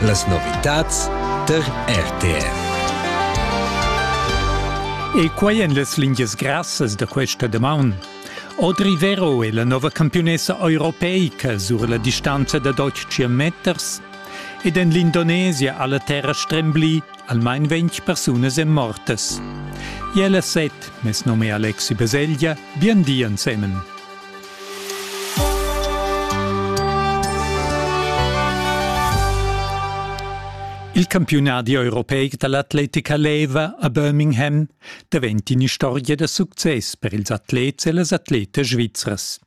Las novitads tar RTR. E quai en las lingias grassas da questa damaun. Audrey Vero è la nova campiunessa europeica sur la distanza da 12 meters ed en l'Indonesia ha la terra stremblì almain 20 persunas èn mortas. Jella Set, mes nome Alexi Baselgia, bien di ensemen. Il campiunadi europeic da l'atletica leva a Birmingham davent in'istorgia da success per ils atlets e las atletas svizras.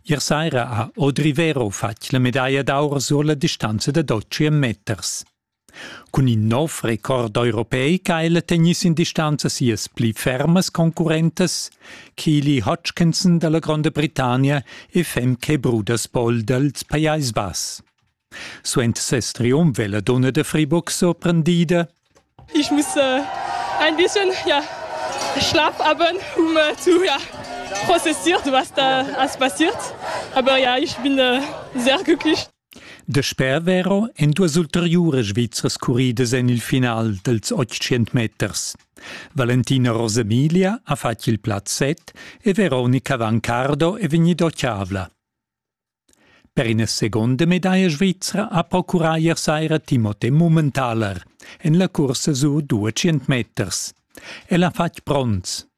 Ier saira ha Audrey Vero fatg la medaglia d'aur sur la distanza da 12 meters. Cun in nov record europeic ha ella tegnì sin distanza sias pli fermas concurrentas, Keely Hutchinson dalla Gronda Britannia e Femke Brudersboll dals Pajais Bass. Suenter ses triumf è la donna da Fribourg sorprendida. Ich muss äh, ein bisschen ja, schlappabend, um äh, zu ja, prozessieren, was da alles passiert. Aber ja, ich bin äh, sehr glücklich. Dasper vero èn duas ulteriuras Svizras curridas en il final dals otg meters. Valentina Rosemilia ha fatg il plaz set e Veronica Vancardo è vegnida otgavla. Per ina seconda medaglia svizra ha procurà ier saira Timote Mummentaler en la cursa sur 200 meters. El ha fatg bronz.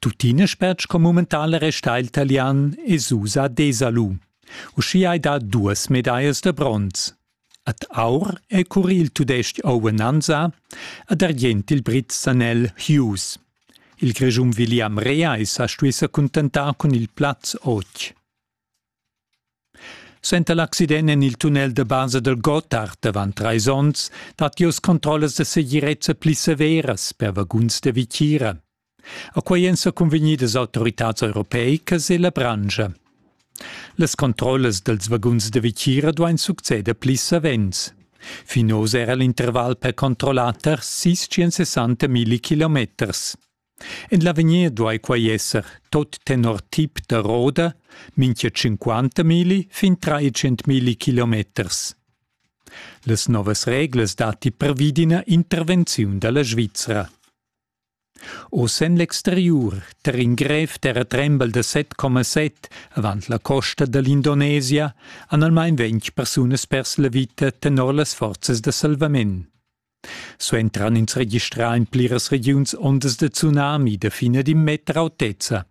Tuttina spetg co mumental resta il talian Esusa Desalu. Uschia hai dà duas medaias da bronz. Ad aur è curri il tudestg Owen Anza, ad argient il Brit Sanel Hughes. Il Grischun William Rea è sa stuì sa cuntentar cun il plaz otg. Suenter l'accident en il tunnel da basa dal Gotthard davant trais onns datti oz controllas da segirezza pli severas per vaguns da vitgira. A quai èn sa cunvegnidas autoritads europeicas e la branscha. Las controllas dals vaguns da vitgira duain succeder pli savens. Fin oz era l'interval per controllar tar 660 milli kilometers. En l'avegnir duai quai esser tot tenor tip da roda mincha 50 mili fin 300 mili kilometers. Las novas reglas datti previdina intervenziun da la Svizra. Oz en l'exteriur, tar in grev terratrembel da 7,7 avant la costa da l'Indonesia han almain ventg persunas pers la vita tenor las forzas da salvament. Suentran ins registrà en pliras regiuns ondas da tsunami da fin ed in meter autezza.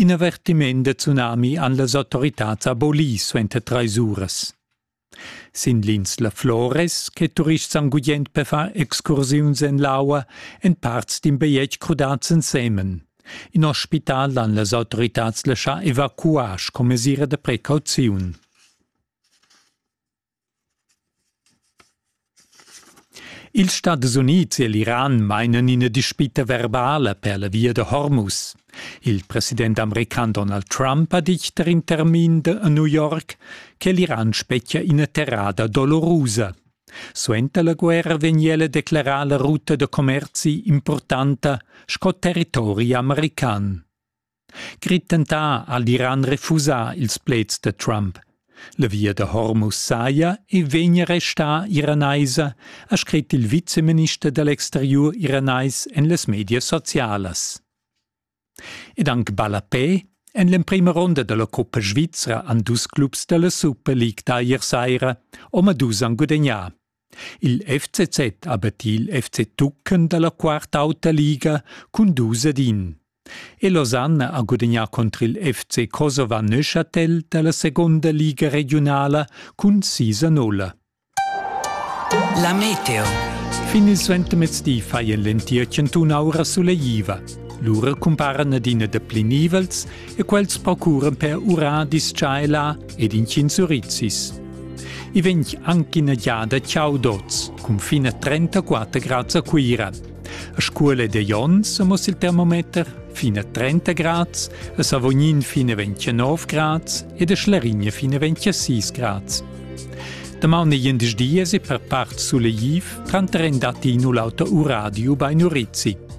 In avertiment da tsunami han las autoritads abolì suenter trais uras. Sin l'insla Flores, che turists han gugent per far excursiuns en l'aua, èn parts d'in bajetg crudads ensemen. In ospital han las autoritads laschà evacuar sco mesira da precauziun. Ils Stadis Unids e l'Iran mainan ina dispita verbala per la via da Hormuz. Il president american Donald Trump ha ditg tar in termin a New York che l'Iran spetgia ina terrada dolorosa. Suenter la guerra vegn ella declerà la ruta da commerzi importanta sco territori american. Grit tentà al d'Iran refusar ils pleds da Trump. La via da Hormuz saja e vegnia restà iranaisa, ha scrit il viceminister da l'exteriur iranais en las medias socialas. Ed anc ballapè, en l'emprima ronda da la coppa svizra han dus clubs da la Super League da ier saira omadus han gudagnà. Il FCZ ha battì il FC Tucken da la quarta auta liga cun dus ed in. E Lausanne ha gudagnà contro il FC Kosova Neuchâtel da la seconda liga regionala cun sis a nulla. La meteo. Fin il suentermezdi fai en l'entir cantun aura suleiva. Lura cumparan adina da pli nivels e quels procuran per urar dischaila ed intgins urizis. I vegn anche ina giada Chaudots, cun fin a 34 grads a Cuira. A scuola de Jons amos il termometer fin a 30 grads, a Savognin fin a 29 grads ed a Schlarigna fin a 26 grads. Damaun e jendisch dies e per part suleiv, tranter en datti in u l'auter uradiu bei Nurizzi.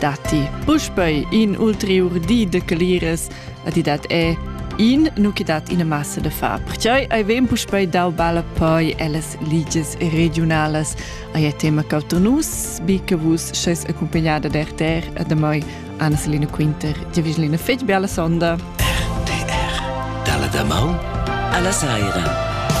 Datti puspei in ulteriur di de cleras a ti dat è in nu che dat ina massa da far. Perciò ai vem puspei dau balla poi ellas liges regionalas. Ai è tema cauter nus, bi che vus sches accompagnada der ter a da moi Anna-Selina Quinter. Ti vislina fetg bella sonda. RTR, dalla da mau alla saira.